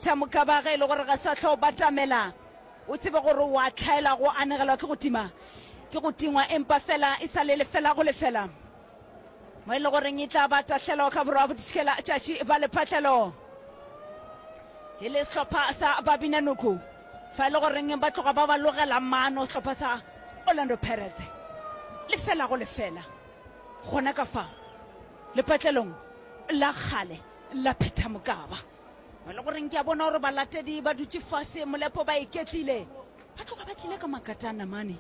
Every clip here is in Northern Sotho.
Thamokaba ge e le gore ga sa hlo batamela, o tsebe gore o a tlhaela go anegelwa ke go tima, ke go tingwa empa fela e sa le lefela go lefela mo e le goreng e tla ba tahlelo ka borwa boditšhikela tšatši ba lephatlelo e le sehlopha sa Babinanoko fa e le goreng ba tloga ba ba logela mano sehlopha sa Orlando Pirates lefela go lefela gona ka fa lepatlelong la kgale la Phethamokaba. mo le goreng ke a bona gore balatedi ba dutše fase molepo ba iketlile ba tloga ba tlile ka makata a namane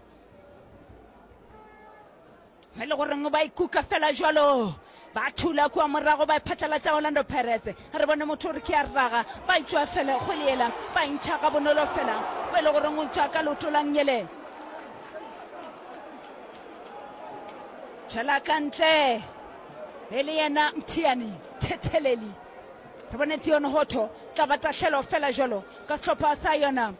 mo le goreng ba ikuka fela jalo ba thula kua morago ba phatlalatša orlando pirates re bone motho gore ke a raga ba itšwa fela go leela ba ntšha ka bonolo fela mo e le goreng o ntšha ka loto la ngele tšhela ka ntle e le yena mthiane thetheleli Re bone Deon Hotto tla ba tahlelo fela jwalo ka sehlopha sa yona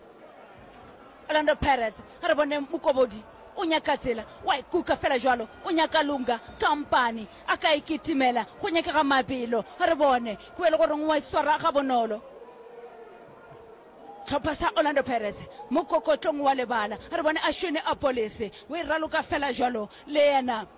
Orlando Pirates. A re bone Mokobodi o nyaka tsela, wa e kuka fela jwalo, o nyaka Lunga kampane a ka e kitimela, go nyakega mabelo. A re bone go be le goreng wa e swara gabonolo sehlopha sa Orlando Pirates mo kokotlong wa lebala. A re bone Ashwini Apolise o e raloka fela jwalo le yena.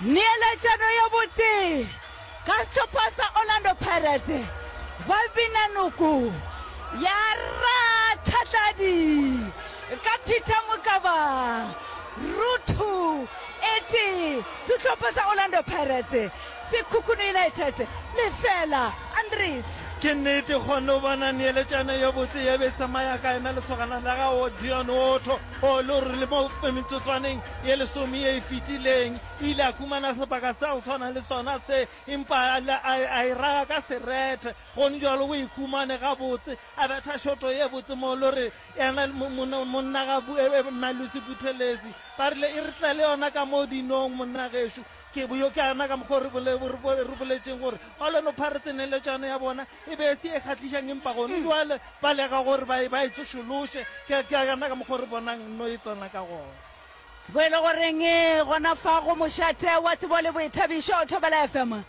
Neeletšano yo botse ka sehlopha sa Orlando Pirates ba bina noko ya rathatladi ka Peter Mokaba Ruthu ete sehlopha sa Orlando Pirates Sekhukhune United, lefela, Andries. Ke nnete go no bona neeletšano yo botse ye be tsamaya ka yena lesogana la ga Dion Otto o lo rile mo metsotswaneng ye lesome ye e fetileng e ile a kumana sebaka sa go swana le sona se empa a e raya ka serete go njalo o e kumane ga botse a betha shoto ye botse mo lo re yena monna ga Malusi Buthelezi ba rile e re tle le yona ka mo dinong monna gešo Ke bjo ke ana ka mokgwa o re re boletšeng gore Orlando Pirates neeletšano ya bona e be e se ye kgahlišang empa gone bjale ba leka gore ba e ba e tsošološe. Ke ke ana ka mokgwa o re bonang nno e tsena ka gona. Bo e le goreng gona fa go mošate wa tsebo le boithabišo Thobela FM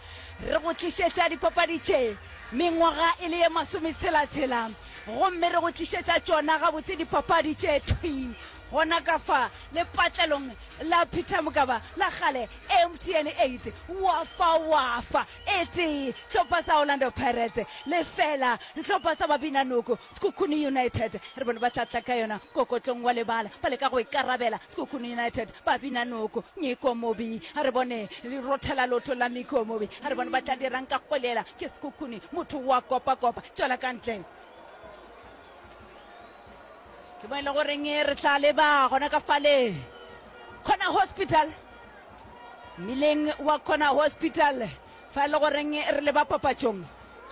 re go tlišetša dipapadi tše mengwaga e le ye masometshela-tshela gomme re go tlišetša tšona gabotse dipapadi tše thwi Gona ka fa lepatlelong la Peter Mokaba la kgale MTN 8 wa fa wa fa e tee sehlopha sa Orlando Pirates lefela sehlopha sa Babinanoko Sekhukhune United re bone ba tlatla ka yona kokotlong wa lebala ba leka go ikarabela Sekhukhune United Babinanoko Nyiko Mobi a re bone le rothela lotho la Miko Mobi a re bone ba tla dirang ka kgolela ke Sekhukhune motho wa kopa kopa tšwela ka ntle ke mo e le goreng re tla leba gona ka fale kgona hospital mmileng wa kgona hospital fa e le goreng re leba papatšong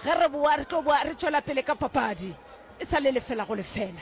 ge re boa re tlo boa re tšwela pele ka papadi e sa le lefela go lefela